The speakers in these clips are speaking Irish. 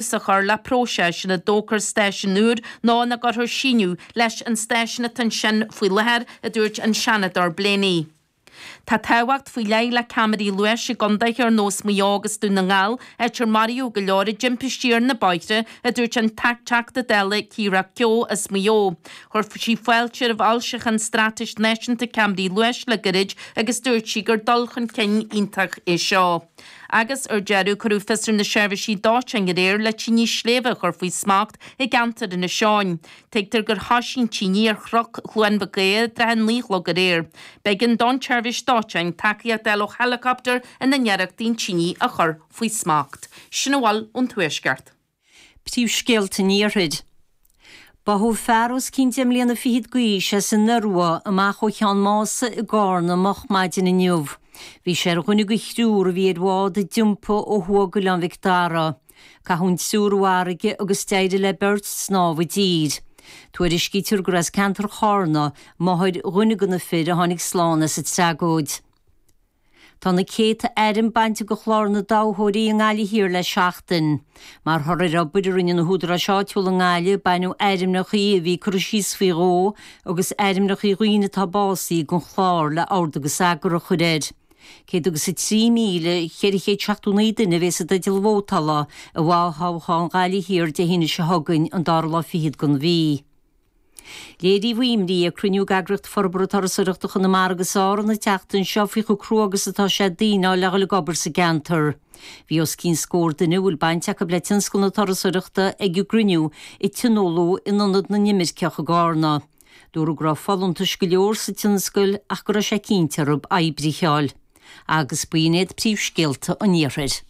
a chur le próiseas ina dtógfar stáisiún úr nó ina gcuirfear síneadh leis an stáisiún atá ansin faoi láthair, a dúirt an Seanadóir Blaney. Tá tábhacht faoi leith le ceamaraí luais i gcontaetha ar nós Maigh Eo agus Dún na nGall, áit ar maraíodh go leor i dtimpistí ar na bóithre, a dúirt an Teachta Dála Keira Keogh as Maigh Eo. Chuir sí fáilte roimh fhoilseachán Straitéis Náisiúnta Ceamaraí Luais le gairid agus dúirt sí gur dul chun cinn iontach é seo. agus ar deireadh cuireadh fios ar na seirbhísí dóiteáin aréir le tine shléibhe a chur faoi smacht i gceantar Inis Eoghain. Tuigtear gur thoisigh an tine ar chroc Chluain Mhic Aodha i dtrátha a naoi a chlog aréir. B'éigean don tSeirbhís Dóiteáin tacaíocht a fháil ó héileacaptar ina n-iarracht an tine a chur faoi smacht. Sin a bhfuil ón tuaisceart. Príomhscéalta an Iarthair. Báthadh fear os cionn deich mbliana fichead d'aois as an Iorua amach ó Cheann Mása i gCarna moch maidin inniu. Bhí sé ar dhuine de thriúr a bhí ar bhád a d'iompaigh ó thuaidh d'Oileán Mhic Dara. Caitheadh an triúr i bhfarraige agus d'éirigh le beirt snámh i dtír. Tuairiscítear gur as ceantar Charna máthair duine de na fir a tháinig slán as an tragóid. Tá na céadta ainm bainte de Chlár na dToghthóirí i nGaillimh Thiar le seachtain. Mar thoradh ar obair a rinne na húdaráis áitiúla i nGaillimh, baineadh ainmneachaí a bhí curtha síos faoi dhó agus ainmneachaí daoine atá básaithe den chlár le ord agus eagar a chur air. Céad agus a trí míle, cheithre chéad seachtó naoi duine a bheidh i dteideal vótála i bhfo-thoghchán Ghaillimh Thiar Dé hAoine seo chugainn, an dara lá fichead den mhí. Léiríodh imní ag cruinniú d'Eagraíocht Forbartha Turasóireachta Chonamara agus Árann an tseachtain seo faoi chomh crua agus atá sé daoine a fháil le ghoil ag obair sa gceantar. Bhí os cionn scór duine a bhfuil baint acu le tionscal na turasóireachta ag an gcruinniú a tionóladh in Ionad na nImirceach i gCarna. Dúradh go raibh folúntais go leor sa tionscal ach go raibh sé cinnte orthu oibrithe a fháil agus b'in iad príomhscéalta an iarthair.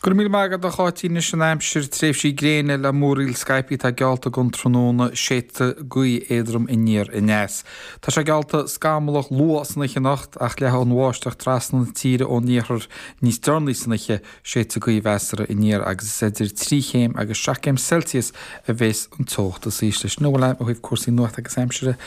Go raibh míle maith agat a Cháitín. Anois an aimsir, tréimhsí gréine le múraíl scaipthe atá geallta don tráthnóna, séidfidh gaoth éadrom aniar aneas. Tá sé geallta scamallach luath san oíche anocht ach leathfidh an bháisteach trasna na tíre ón iarthar níos deireanaí san oíche, séidfidh gaoth mheasartha aniar agus is idir trí chéim agus seacht gcéim Celsius a bheas an teocht is ísle. Sin a bhfuil agam ó thaobh cúrsaí nuachta agus aimsire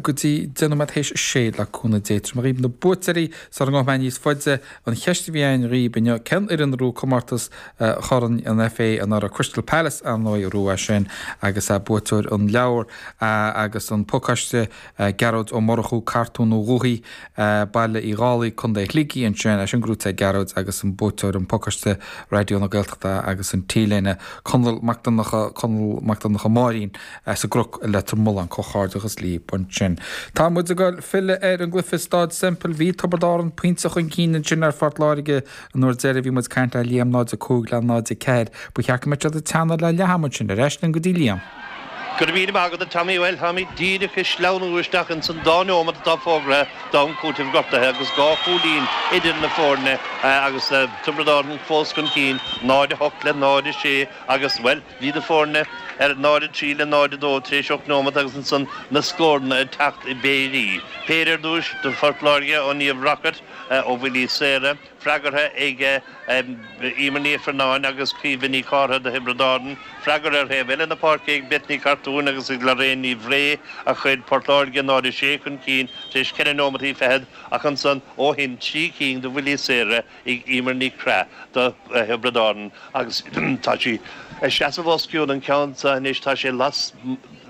go dtí deich nóiméad théis a sé le cúnamh Dé. Tabharfaidh mé daoibh na buaiteoirí sula ngabhfaidh mé níos faide. An cheist a bhí ann riamh inniu, cén fhoireann a bhuaigh comórtas Chorn an FA anuraidh? Crystal Palace, ar ndóigh, a bhuaigh é sin agus buaiteoir an leabhair agus an pacáiste, Gearóid Ó Murchú, Cartún Ó Ghuthí, Baile Uí Dhálaigh, Contae Shligigh ansin, é sin ag goil go dtí Gearóid agus an buaiteoir an pacáiste, Raidió na Gaeltachta agus an T-léine, Conall Mac Donncha, Conall Mac Donncha Máirín. as an gCnoc i Leitir Mealláin comhghairdeachas libh ansin. Tá muid ag goil filleadh ar an gcluife i Stáid Semple. Bhí Tiobraid Árann pointe chun cinn ansin ar Phort Láirge an uair deireadh bhí muid caint le Liam 0-5 le 0-4. Ba cheart go mbeadh siad ag teannadh le leath-am ansin. Ar ais linn go dtí Liam. Go raibh míle maith agat a Tommy. Bhuel táimid díreach ag sleamhnú isteach ins an dá neomat atá fógraithe d'am cúitimh gortuithe agus dhá chúilín idir na foirne agus Tiobraid Árann fós chun cinn 0-8 le 0-6 agus bhuel Bhí na foirne ar 0-3 le 0-2 tar éis 8 nóimeat agus ansan na scóranna ag teacht i bpéirí. Péire ar dtús do Phort Láirge ó Niamh Rockett ó bhuillí saora, freagartha ag Emer Ní Ifearnáin agus Caoimhe Nic Cárthaigh do Thiobraid Árann. Freagairt ar thaobh eile na páirce ag Beth Ní Chartúin agus ag Lorraine Ní Bhré a chuir Port Láirge 0-6 chun cinn tar éis 4 nóimeataí fichead ach ansan ó shin trí cinn de bhuillí saora Emer Nic Craith do Thiobraid Árann agus tá sí ag seasamh os cionn an ceann seo anois. Tá sé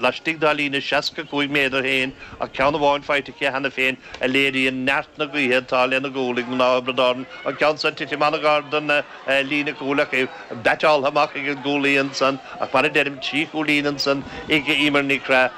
laistigh dá líne 65 méadar féin ach ceann amháin faighte aici cheana féin a léiríonn neart na gaoithe atá lena gcúl ag mná Thiobraid Árann. An ceann seo ag titim an-ghar don líne cúil ach é beaiteáltha amach ag an gcúlaí ansan ach mar a deirim trí chúilín ansan ag Emer Nic Craith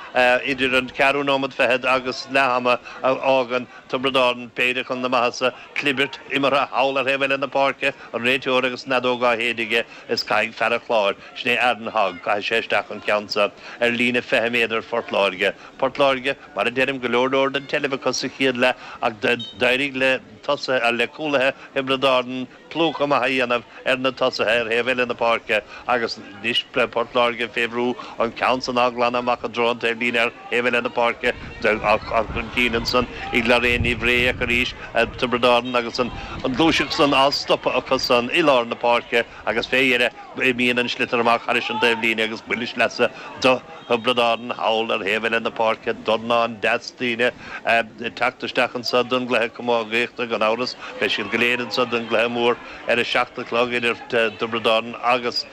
idir an ceathrú nóiméad fichead agus leath-am a fhágann Tiobraid Árann péire chun na maitheasa. Clibirt, imeartha thall ar thaobh eile na páirce, an réiteoir agus an fheadóg á séideadh aige is caithfidh fear an Chláir, sin é Aaron Hogg, caithfidh sé isteach an ceann seo ar líne 20 méadar Phort Láirge. Port Láirge, mar a deirim, go leor leor den tseilbh acu sa chéad leath ach d'éirigh le tosaithe, le cúlaithe Thiobraid Árann plúchadh maith a dhéanamh ar na tosaithe ar thaobh eile na páirce agus anois Port Láirge fé bhrú an ceann san á glanadh amach i dtreo an taobhlíne ar thaobh eile na páirce á chur chun cinn ansan ag Lorraine Ní Bhré ach arís Tiobraid Árann agus an ghluaiseacht san á stopadh acu san i lár na páirce agus fé dheireadh imíonn an sliotar amach thairis an taobhlíne agus buille sleasa do Thiobraid Árann thall ar thaobh eile na páirce dornán deas daoine ag teacht isteach anso don gcluiche camógaíochta gan amhras beidh siad go léir anso don gcluiche mór ar a seacht a chlog idir Tiobraid Árann agus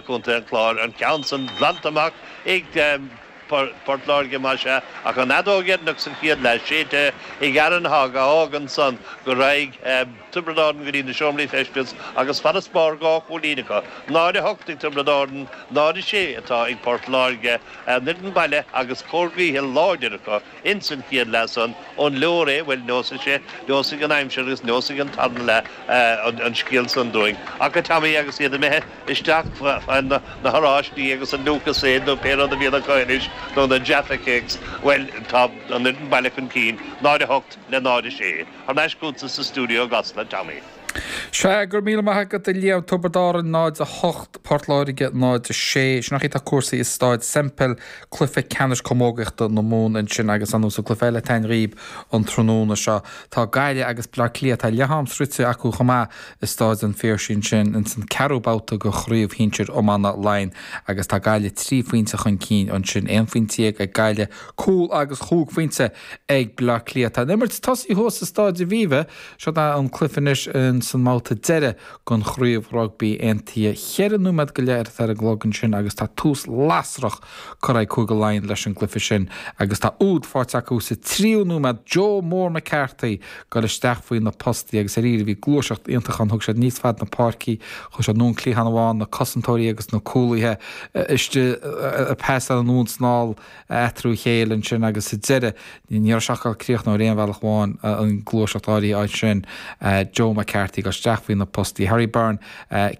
contae an Chláir, an ceann san glanta amach ag Port Láirge más ea, ach an fheadóg dhéanach sa chéad leath séidte ag Aaron Hogg a fhágann san go raghaidh Tiobraid Árann go dtí na seomraí feistis agus farasbarr dhá chúilín acu, 0-8 ag Tiobraid Árann, 0-6 atá ag Port Láirge, an fhoireann baile agus cóir gaoithe láidir acu. Ins an chéad leath san, an leor é, bhuel, neosfaidh sé, neosfaidh an aimsir agus neosfaidh an tarna leath an scéal san dúinn. Ach, a Tommy, agus iad imithe isteach chun na horáistí agus an Lucozade nó pé rud a bhíonn acu anois, nó na Jaffa Cakes, bhuel, tá an fhoireann baile chun cinn, 0-8 le 0-6. Thar n-ais chugatsa sa stiúideo i gCasla, Tommy. Sea, go raibh míle maith agat, a Liam. Tiobraid Árann 0, 8, Port Láirge 0, 6. Sin an chaoi atá cúrsaí i Stáid Semple, cluiche ceannais camógaíochta na Mumhan ansin agus ar ndóigh sa cluiche eile atá á imirt an tráthnóna seo. Tá Gaillimh agus Bleá Cliath, tá leath-am sroichte acu chomh maith i Stáid an Phiarsaigh ansin ins an ceathrú babhta de Chraobh Shinsear Iomána Laighean agus tá Gaillimh trí phointe chun cinn ansin, aon phointe dhéag ag Gaillimh, cúl agus chúig phointe ag Bleá Cliath. Tá an imirt tosaithe thuas i Stáid Aviva. Seo'd é an cluiche anois ins an mbabhta deireadh den chraobh rugbaí aontaithe. Cheithre nóiméad go leith atá ar an gclog ansin agus tá tús lasrach curtha ag Cúige Laighean leis an gcluiche sin agus tá úd faighte acu sa tríú nóiméad. Joe Mór McCarthy ag goil isteach faoi na postaí agus dáiríre bhí gluaiseacht iontach ann, thug siad aníos fad na páirce, chuaigh siad anonn cliathán amháin na cosantóirí agus na cúlaithe istigh, pas anonn is anall. eatarthu féin ansin agus sa deireadh ní raibh sé ach ag críochnú ar aon bhealach amháin an gluaiseacht áirithe sin Joe McCarthy ag goil isteach faoi na postaí Harry Byrne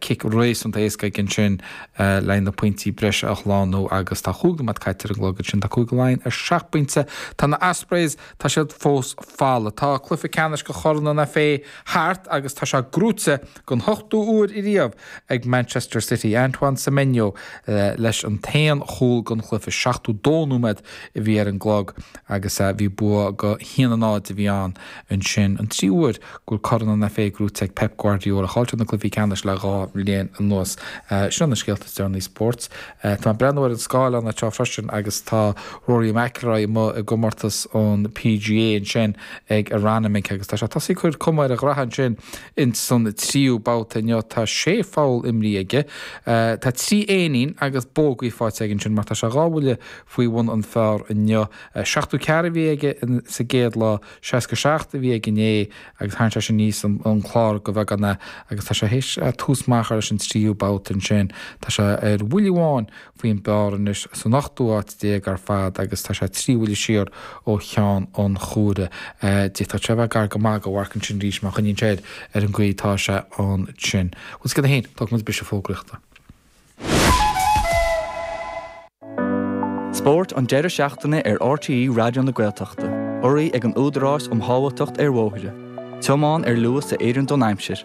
cic réasúnta éasca aige ansin le na pointí breise a shlánú agus tá chúig nóiméad caite ar an gclog ansin tá Cúige Laighean ar seacht bpointe tá na Ospreys tá siad fós folamh tá cluiche ceannais de Chorn an FA thart agus tá sé gnóite don ochtú uair riamh ag Manchester City, Antoine Semenyo leis an t-aon chúl den chluiche 72 nóiméad a bhí ar an gclog agus bhí bua de haon a náid a bhí ann ansin, an tríú uair go bhfuil Corn an FA gnóite ag Pep Guardiola chailleadar na cluichí ceannais le dhá bhliain anuas. Seo na scéalta is deireanaí spóirt. Tá mé ag breathnú ar an scáileán anseo freisin agus tá Rory McIlroy amuigh i gcomórtas an PGA ansin ag Aronimink agus tá sé tosaithe ag cur cuma ar a ghraithe ansin Ins an tríú babhta inniu tá sé pholl imrithe aige. Tá trí éinín agus bógaí faighte aige ansin mar tá sé dhá bhuille faoi bhun an phar inniu. Seachtú ceathair a bhí aige sa gcéad lá, seasca seacht a bhí aige inné agus tharraing sé sin aníos an clár de bheagán é agus tá sé théis tús maith a chur leis an tríú babhta ansin. Tá sé ar bhuille amháin faoin bpar anois san ochtú háit déag ar fad agus tá sé trí bhuille siar ó cheann an Chúire. D'fhéadfadh sé a bheith gar go maith don mharc ansin arís má choinníonn sé air ar an gcaoi atá sé ansin. Rud eicínt a haon, tógfaidh muid briseadh fógraíochta. Spórt an deireadh seachtaine ar RTÉ Raidió na Gaeltachta, urraithe ag an Údarás um Shábháilteacht ar Bhóithre, tiomáin ar luas a oireann don aimsir.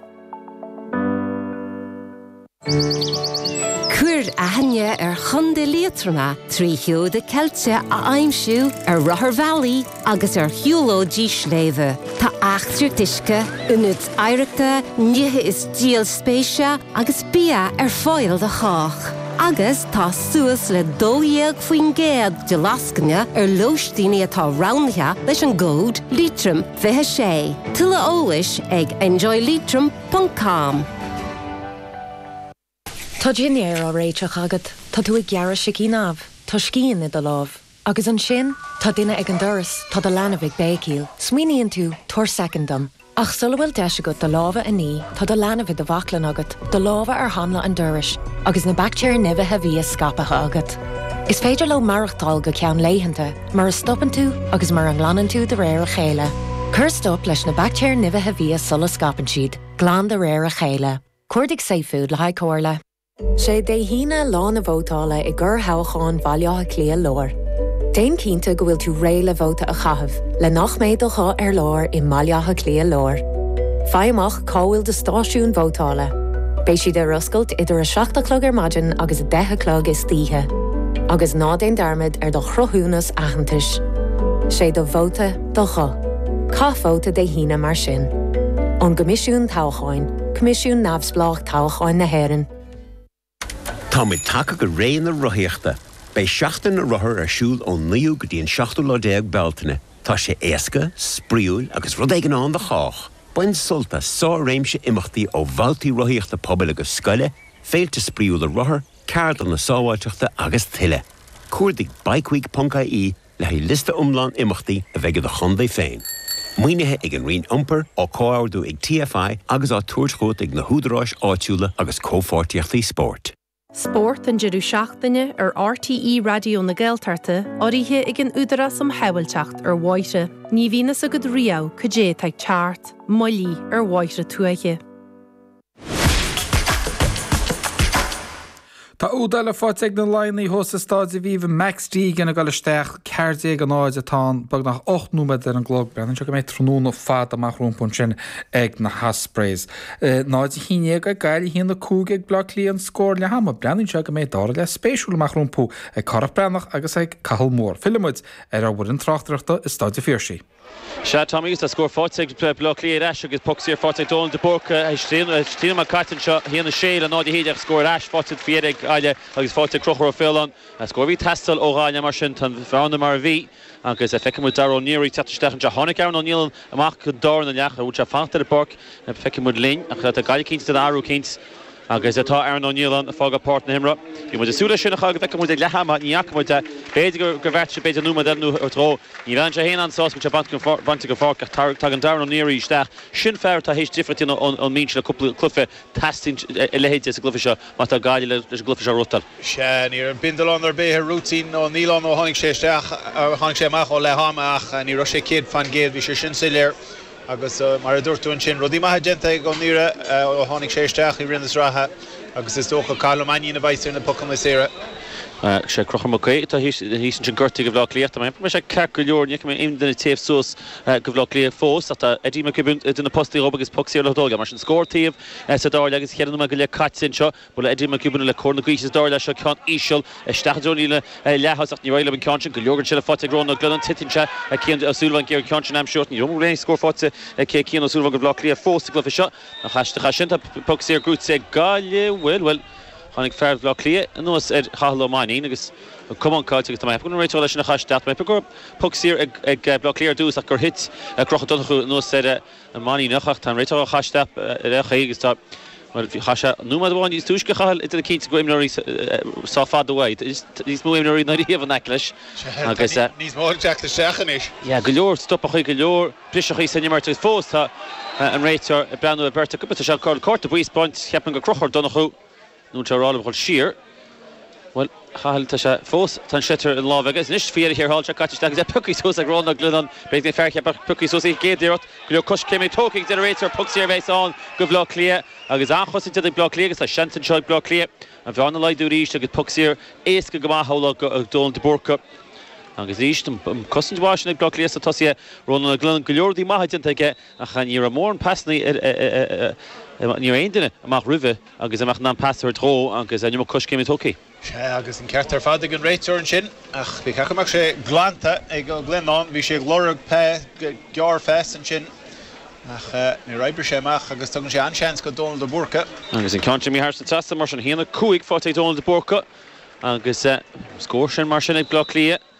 Cuir aithne ar Chontae Liatroma trí sheoda ceilte a aimsiú ar rotharbhealaí agus ar shiúlóidí sléibhe. Tá eachtraí uisce, ionaid oidhreachta, nithe is díol spéise agus bia ar fáil do chách, agus tá suas le 12% de lascaine ar lóistíní atá roghnaithe leis an gcód Liatroim 26. Tuilleadh eolais ag enjoyleitrim. com. Tá dinnéar á réiteach agat, tá tú ag gearradh sicín amh, tá scian i do lámh. Agus ansin, tá duine ag an doras, tá do leanbh ag béicíl. Smaoiníonn tú, 'Tabhair soicind dom. Ach sula bhfuil deis agat do lámha a ní, tá do leanbh i do bhaclainn agat, do lámha ar hanla an dorais, agus na baictéir nimhithe bhia scaipthe agat. Is féidir leo maireachtáil go ceann laethanta. mura stopann tú agus mura nglanann tú de réir a chéile. Cuir stop leis na baictéir nimhithe bhia sula scaipeann siad, glan de réir a chéile. Cuardaigh safefood le haghaidh comhairle. Sé Dé hAoine lá na vótála i gcorrthoghchán Bhaile Átha Cliath Láir. Déan cinnte go bhfuil tú réidh le vóta a chaitheamh le nach mbeidh do ghuth ar lár i mBaile Átha Cliath Láir. Faigh amach Cá bhfuil do stáisiún vótála? Beidh siad ar oscailt idir 7 a chlog ar maidin agus 10 a chlog istoíche. Agus ná déan dearmad ar do chruthúnas aitheantais. Sé do vóta, do ghuth. Caith vóta Dé hAoine mar sin. Ón gCoimisiún Toghcháin, Coimisiún neamhspleách toghcháin na hÉireann. Táimid tagtha go ré na rothaíochta. Beidh Seachtain na Rothar ar siúl ón 9ú go dtí an 7ú lá déag Bealtaine. Tá sé éasca, spraíúil agus rud éigin ann do chách! Bain sult as sár-réimse imeachtaí ó bhabhtaí rothaíochta pobail agus scoile, féilte spraíúla rothar, ceardlanna sábháilteachta agus tuilleadh. Cuardaigh bikeweek.ie Le haghaidh liosta iomlán imeachtaí a bheidh i do chontae féin, maoinithe ag an Roinn Iompair, á comhordú ag TFI agus á tabhairt chugat ag na húdaráis áitiúla agus Comhpháirtíochtaí Spóirt. Spórt an deireadh seachtaine ar RTÉ Raidió na Gaeltachta, urraithe ag an Údarás um Shábháilteacht ar Bhóithre. Ní bhíonn fhios agat riamh cad é atá ag teacht, moilligh ar bhóithre tuaithe. Tá úd eile faighte ag na Laighnigh thuas i Staid Aviva, Max Deegan ag dul isteach. 14-0 atá ann. Beagnach ocht nóiméad ar an gclog. Breathnaíonn sé go mbeidh tráthnóna fada amach rompu ansin ag na hOspreys. 0-11 ag Gaillimh, 1-5 ag Bleá Cliath an scór leathama. Breathnaíonn sé go mbeidh dara leath spéisiúil amach rompu ag Cárthach Breathnach agus ag Cathal Moore. Fillfidh muid ar ár bhfoireann tráchtaireachta i Staid an Phiarsaigh. Sea, Tommy, agus tá scór faighte ag Baile Átha Cliath ar ais agus poc saor faighte ag Dónal de Búrca. Trí nóiméad caite anseo, a haon, a sé le 0, a haon déag, scór ar ais faighte faoi dheireadh ag Gaillimh agus faighte ag Conchúr Ó Faoláin. Scór a bhí ag teastáil ó Ghaillimh mar sin tá an bhearna mar a bhí agus feiceann muid Dara Ó Nearaí ag teacht isteach anseo. Tháinig Aaron Ó Nialláin amach don dara leath. An bhfuil sé fanta ar an bpáirc? Feicfidh muid linn ach tá Gaillimh cinnte ag déanamh athrú, cinnte. Agus tá Aaron Ó Nialláin ag fágáil páirc na himeartha. Bhí muid ag súil leis sin a chur go bhfeicfeadh muid ag leath ama. Ní fhaca muid é. B'fhéidir gur bheartaigh sé, b'fhéidir nóiméad eile nó dhó. Ní bheidh sé féin an-sásta go bhfuil sé bainte den pháirc ach tagann Darragh Ó Náraigh isteach. Sin fear atá théis difríocht a dhéanamh ón mbinse le cúpla cluiche. Teastaíonn a leithéide sa gcluiche seo má tá Gaillimh leis an gcluiche seo a bhuachtáil. Sea, ní raibh bindealán ar bith ar rúitín Ó Nialláin ó tháinig sé isteach, ó tháinig sé amach ó leath ama ach ní raibh sé céad fan gcéad, bhí sé sin soiléir. Agus mar a dúirt tú ansin, rudaí maithe déanta ag Ó Náraigh ó tháinig sé isteach i rith na sraithe agus is dócha, Cathal Ó Mainnín a bheas ar na pocanna saora. Is é Conchúr Mac Aoidh atá thíos ansin gortaithe ag Bhleá Cliath. Dá mbeadh sé ceart go leor, ní fheicim aon duine ag téamh suas go Bhleá Cliath fós ach tá Eddie Mac Giobúin idir na postaí dhóibh agus poc saor le tógáil aige. Mar sin, scór an taobh sa dara leath agus ceithre nóiméad go leith caite anseo. Bhuail Eddie Mac Giobúin le cóir na gaoithe sa dara leath. Seo ceann íseal isteach i dtreo an líne leath-thosach. Ní raibh liom an ceann sin go leor den tseilbh faighte ag Rónán Ó Glionnáin. Titeann sé. Cian O'Sullivan ag iarraidh an ceann sin a aimsiú. Ní raibh aon scór faighte ag Cian O'Sullivan go Bhleá Cliath fós sa gcluiche seo. Nach aisteach é sin. Tá poc saor buaite ag Gaillimh. Bhuel, bhuel. Tháinig fear Bhleá Cliath anuas ar Chathal Ó Mainnín agus an camán caillte agus tá mé ag ceapadh go raibh réiteach leis sin. Nach aisteach. Tá mé ag ceapadh go raibh poc saor ag Bhleá Cliath ar dtús ach gur thit Conchúr Ó Donnchú anuas ar. Mainnín ach tá an réiteoir á caitheamh isteach ar a' chaoi agus tá mar bhí chaith sé nóiméad amháin níos túisce a chaitheamh ag déanamh cinnte go bhfuil imreoirí sách fada uaidh. Tá níos mó imreoirí ná riamh in aice leis agus. Tá níos mó ag teacht isteach anois. Yeah go leor stopachaí go leor briseachaí san imirt agus fós tá an réiteoir ag breathnú ar beirt acu. Tá sé chun cárta buí a spáint ceapaim go Conchúr Ó Donnchú. Nuair tá Rálaim dhul siar, bhuel, Chathail, tá sé fós, tá an sliotar ina láimh aige. Is anois, faoi dheireadh thiar thall, tá sé caite isteach agus é pioctha suas ag Rónán Ó Glionnáin. Beidh na fear cheaptha ag piocadh suas í ag céad iarracht. Go leor coiscéimeanna tógtha aige a deir an réiteoir. Poc saor a bheas ann go Bhaile Átha Cliath agus an-chosaint déanta ag Baile Átha Cliath agus tá seans anseo ag Baile Átha Cliath an bhearna a laghdú arís agus poc saor éasca go maith amhlaidh ag Dónal de Búrca. Agus arís, an cosaint mhaith sin ag Baile Átha Cliath sa tosaithe, Rónán Ó Glionnáin, go leor rudaí maithe déanta aige ach ní raibh mórán pasannaí ar, ní raibh aon duine amach roimhe. Agus amach in ann pas a thabhairt dhó agus an iomarca coiscéim tógtha. Sea, agus an ceart ar fad ag an réiteoir ansin, ach ba cheart go mbeadh sé glanta ag Ó Glionnáin. Bhí sé ag lorg gearrphas ansin, ach níor oibrigh sé amach agus tugann sé an-seans go Dónal de Búrca. Agus an ceann sin imithe thar an trasnán mar sin, 1-5 faighte ag Dónal de Búrca agus scór sin mar sin ag Bleá Cliath.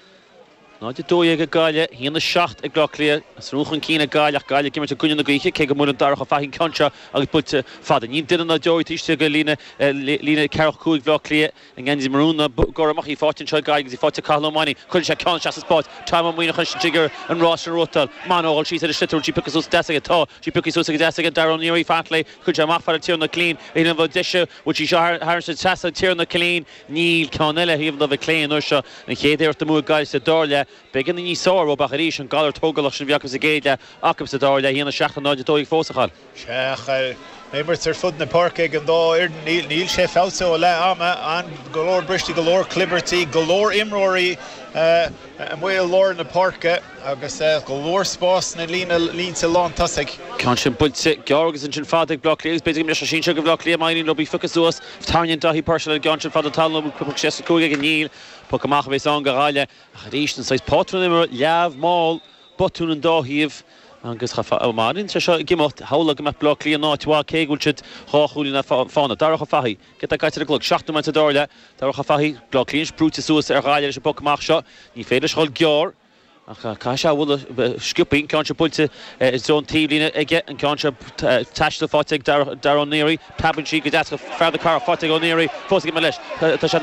0-12 ag Gaillimh, 1-7 ag Áth Cliath. Is rún chun cinn ag Gaillimh ach Gaillimh ag imirt i gcoinne na gaoithe, cé go mbuaileann Darragh Ó Fathaigh an ceann seo agus bainte fada. Níl duine ná deoraí taobh istigh de líne ceathracha cúig Bhaile Átha Cliath. I ngan fhios do mharúin na gCormach, í faighte anseo ag Gaillimh agus í faighte ag Cathal Ó Mainnín. Cuireann sé ceann isteach sa spás. Tom Ó Muineacháin anois ag iarraidh an rás sin a bhuachtáil. Muineacháin ag dul síos ar an sliotar. An bhfuil sí pioctha suas go deas aige? Tá sí pioctha suas go deas aige. Darragh Ó Náraigh, fair play. Chuir sé amach fada Tiarnán Ó Cillín. Níl aon bheo deise. Bhuail sí seo thar an trasnán Tiarnán Ó Cillín. Níl ceann eile taobh amuigh ar clé an uair seo. An chéad iarracht amú ag Gaillimh sa dara leath. B'éigean a níos fearr ab ach arís an galar tógálach sin a bhí acu sa gcéad leath acu sa dara leath cheana 7 in aghaidh a 12 fós a Chathail. Féach ar imirt ar fud na páirce ag an dá fhoireann. Níl níl sé feabhsaithe ó leath ama an go leor briseadh go leor clibirtí go leor imreoirí amuigh i lár na páirce agus go leor spás sna líne línte lántosaigh. Ceann sin buailte gearr agus ansin fada ag Bleá Cliath agus b'fhéidir go mbeidh sé sinsir go Bhleá Cliath má éiríonn leo í a phiocadh suas. Tarraingíonn Daithí Purcell an ceann sin fada talún poc 65 ag an Níl, poc amach a bhéas ann do Ghaillimh ach arís an saghas pátrún imirt leamh, mall, botúin ón dá thaobh agus cha fá, má éiríonn sé seo ag imeacht, shamhlófá go mbeidh Baile Átha Cliath in áit mhaith cé go bhfuil siad dhá chúilín as fána. Darach Ó Fathaigh, céard atá caite ar an gclog, seacht nóiméad sa dara leath, Darach Ó Fathaigh, Baile Átha Cliath anois brúite suas ar Ghaillimh leis an bpoc amach seo, ní féidir leis dhul gearr, Ach caithfidh sé a bhualadh sciobtha, ceann seo buailte i dtreo an taobhlíne aige, an ceann seo ag taisteal faighte ag Darragh Ó Neary, preabann sí go deas go fearr do cara faighte ag Ó Neary fós ag imirt leis. Tá sé